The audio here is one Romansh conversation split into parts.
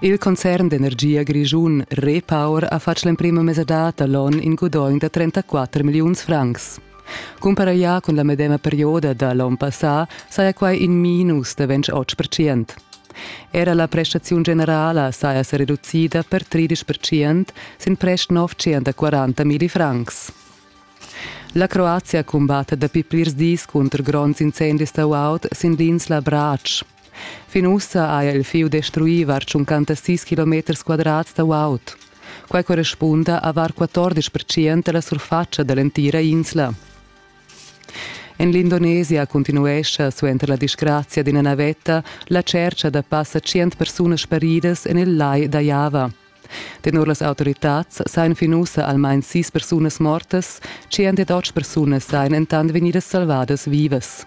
Il concern d'energia grischun Repower ha fatg l'emprima mesadad da l'onn in gudogn da 34 milliuns francs. Cumparaglià cun la medema perioda da l'onn passà saja quai in minus da 28 percent. Era la prestaziun generala saja sa reducida per 13 percent sin prest 940.000 francs. La Croazia cumbatta dapi plirs dis cunter gronds incendis da guaud sin l'insla Brač. Fin ussa haja il fieu destruì var tschuncanta sis kilometers quadrats da guaud. Quai correspunda a var 14 percent da la surfatscha da l'entira insla. En l'Indonesia continuescha suenter la disgrazia d'ina navetta la tschercha da passa 100 persunas sparidas en il lai da Java. Tenor las autoritads sajan fin ussa almain sis persunas mortas, 108 persunas sajan entant vegnidas salvadas vivas.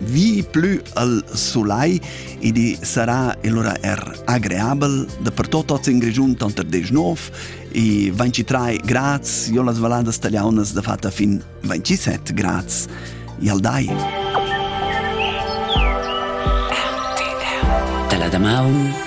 vi plü al sulai ed i sarà allura er agreabel dapertut oz in Grischun tanter 10 9 e 23 grads io las valladas taliaunas da fatta fin 27 grads e al dai. Dalla da maun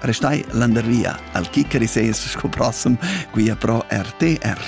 Restai landervia al chiccari ses sco prossem, quia pro RTR.